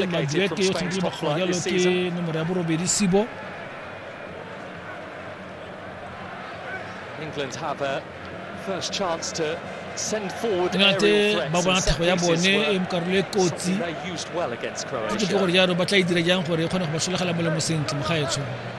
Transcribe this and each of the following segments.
le maduete yo tshwanetse ba kgojalo ke nomoro ya borobedi sibo England have a first chance to ngate ba bona thago ya bone e mokarolo e kotsi ke gore jalo ba tla e dira jang gore e kgone go ba solegela molemo sentle mo gaetsho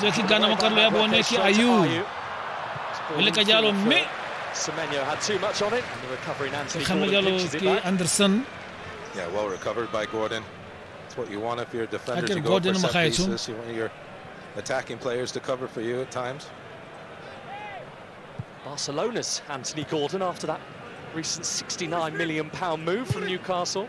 zwe ke gana mo karolo ya bone ke ayu le ka jalo mme kganne jalo ke anderson Yeah, well recovered by Gordon. That's what you want if you're a defender to go for set pieces. You want your attacking players to cover for you at times. Barcelona's Anthony Gordon after that recent £69 million move from Newcastle.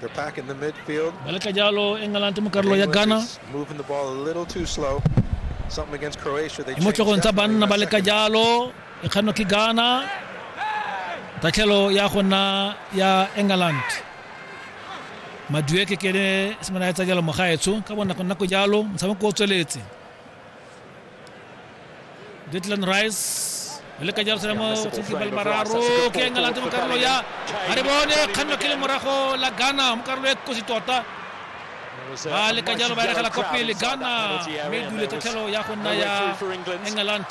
They're back in the midfield. Bale ka jalo e ngalante mo karolo ya Ghana. England is Moving the ball a little too slow. Something against Croatia. They mo changed tlhogong tsa that one in banna the ba le ka second. jalo e kganwa ke Ghana. Tatlhelo ya go nna ya England. Madueke ke ene semana ya tsa jalo mogaetsho ka bonako nako jalo motshameko o tsweletse. Declan Rice le ka jalo selemo tshwantse ba le mararo ke eng a late mo karolo ya ga re bone kganno ke le morago la ghana mo karolo e kosi tota ba le ka jalo ba eregela kwa pele ghana mme dule tatlhelo ya go nna ya england